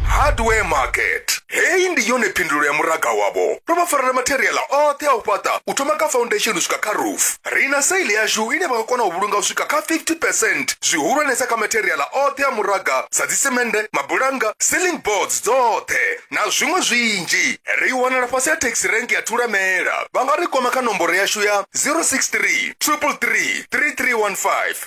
hardware market heyi ndi yone phindulo ya muraga wavho ro vha farela materiala oṱhe a u fhaṱa u thoma kha foundation u swika kha roof ri na saili yashu ine vha nga kona u vhulunga u swika kha 50 percent zwihulwanesa kha materiala oṱhe a muraga sa dzisemende mabulanga ceiling boards dzoṱhe na zwiṅwe zwinzhi ri wanala fhasi ya taxi rank ya thulamela vha nga ri kwama kha nomboro yashu ya 063 333 3315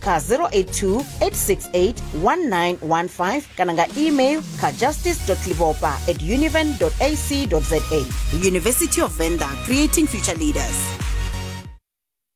kha 082 868 1915 kana nga email kha justice livopa at univen ac za university of venda creating future leaders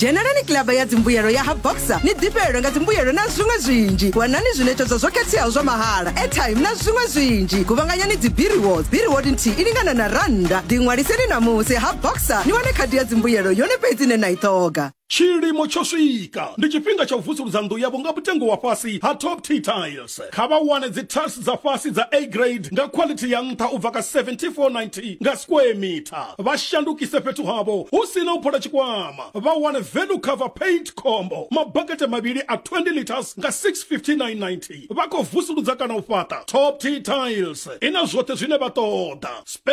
dzhenelani kilaba ya dzimbuyelo ya ha boxer ni ḓifhelelwe nga dzimbuyelo na zwiṅwe zwinzhi wanani zwiṋetshedzo zwo khetheaho zwa mahala airtime na zwiṅwe zwinzhi kuvhanganyani dzibiriwod biriwod nthihi i lingana na rannda ḓiṅwaliseni namusi ha boxer ni wane khadi ya dzimbuyelo yone fhedzi ine na i ṱhoga Tshilimo tsho swika! Ndi tshifhinga tsha u vusuludza nnḓu yavho nga mutengo wa fhasi ha Top T Tiles. Kha vha wane dzi tiles dza fhasi dza A Grade nga khwaḽithi ya nṱha u bva kha R74.90 nga square metre. Vha shandukise fhethu havho hu si na u phola tshikwama. Vha wane Value Cover Paint Combo, mabakete mavhili a 20 litres nga R659.90. Vha khou vusuludza kana u fhaṱa? Top T Tiles i na zwoṱhe zwine vha ṱoḓa.